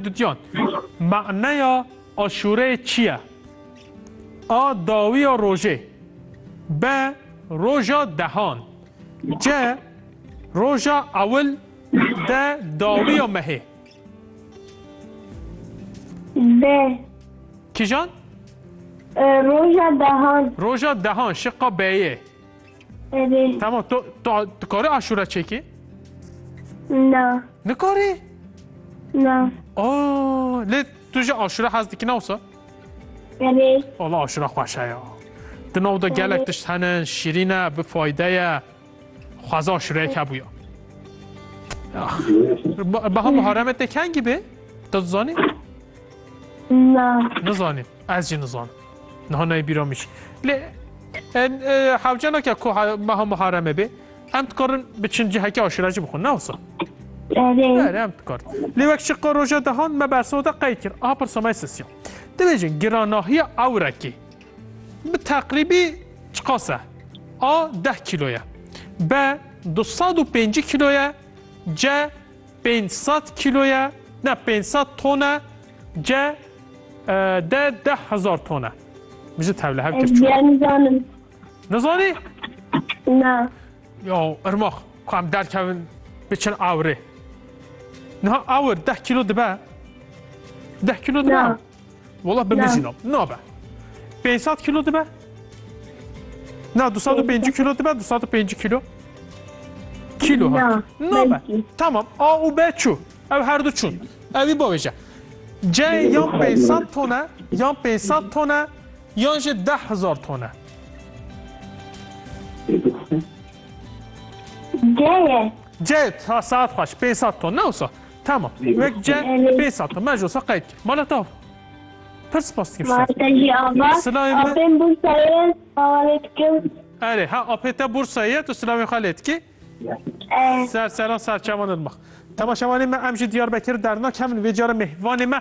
Dudyan, Maneya aşûreyê çi ye? A dawiya rojê. B roja dehan. C roja ewil. D dawiya mehê. D. Kîjan? Roja dehan. Roja dehan, şiqa B'yê. Erê. Tamam to to dikare aşura çekê? Na. Nikare? Na. Aa, lê tu ji aşura hez dikî nawsa? Erê. Valla aşura xweşe ya. Di nav da gelek tişt hene, şîrîn e, bi fayde ye. Xweza aşureyek hebûya. Ah. Baha bi haremete kengî bê? Tu dizanî? Na. Nizanî. Ez jî nizanim. Niha nayê bîra min jî. Lê hewcena ke ku meha Muharremê bê, em dikarin biçin cihekê aşîra jî bixwin, ne wisa? Berê em dikarin. Lê wek şiqa roja dehan me bersna de qey kir. Aha pirsa me sisiya. Dibêjin giranahiya ewrekê bi teqrîbî çiqas e? A deh kîlo ye. B du sed û pêncî kîlo ye. C Pênc sed kîloye ne pênc sed tone ce de deh hezar tone. Min ji tevle hev kir çû. Ez nizanim. Nizanî? Na. Yo, irmax, ku em derkevin biçin awirê. Niha awir deh kîlo dibe? Deh kîlo dibe? Wala bi min jî nab. Nabe. 500 kilo dibe? Na 205 kilo dibe 205 kilo. Kilo ha. Nabe. Tamam. A u B çu. Ev her du çun. Evi baveje. C yan 500 tone, yan 500 tone, yan jî 10000 tone. C ye. C ha saat xweş 500 ton ne olsa. Tamam. Wek ce pê sata me jo sa qeyd kir. Mala tav. Pir spas dikim şer. Mala te jî ava. Silayê me. Apên Bursayê ava lê dikim. Erê ha apê te Bursayê tu silayê xwe lê dikî? Ser seran serçevanên me. Temaşevanê me em ji Diyarbekir dernak hemin vê cara mêvanê me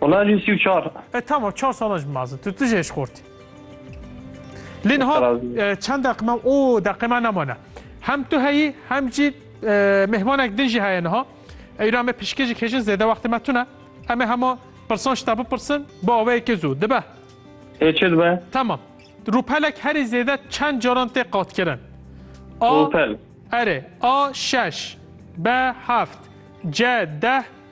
Wala lî sî û çar. E tamam çar sala ji mezin. Tu tu jê ji xortî. Lê niha çend deqime û deqime nemane. Hem tu heyî hem jî mêhmanek din jî heye niha. Eyra me pişkêjik hêjin zêde wextê me tune. Em ê hema pirsan ji te bipirsin bi aweyekê zû. Dibe? Ê çi dibe? Tamam. Rûpelek herî zêde çend caran tê qatkirin? A. Rûpel. Erê. A. Şeş. B. Heft. C. Deh.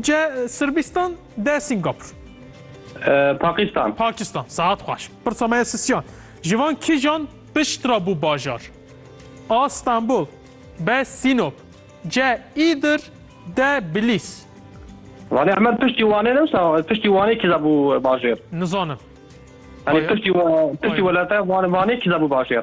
Ce Sırbistan de Singapur. Pakistan. Pakistan. Saat xweş. Pirsa me ye sisyan. Ji van kîjan pişt re bû bajar? A. Stenbol. B. Sînop. C. Îdir. D. Bilîs. Vane Emer piştî Wanê ne wisa piştî Wanê kîza bû bajêr? Nizanim. Hani piştî piştî welate Wanê Wanê kîza bû bajêr?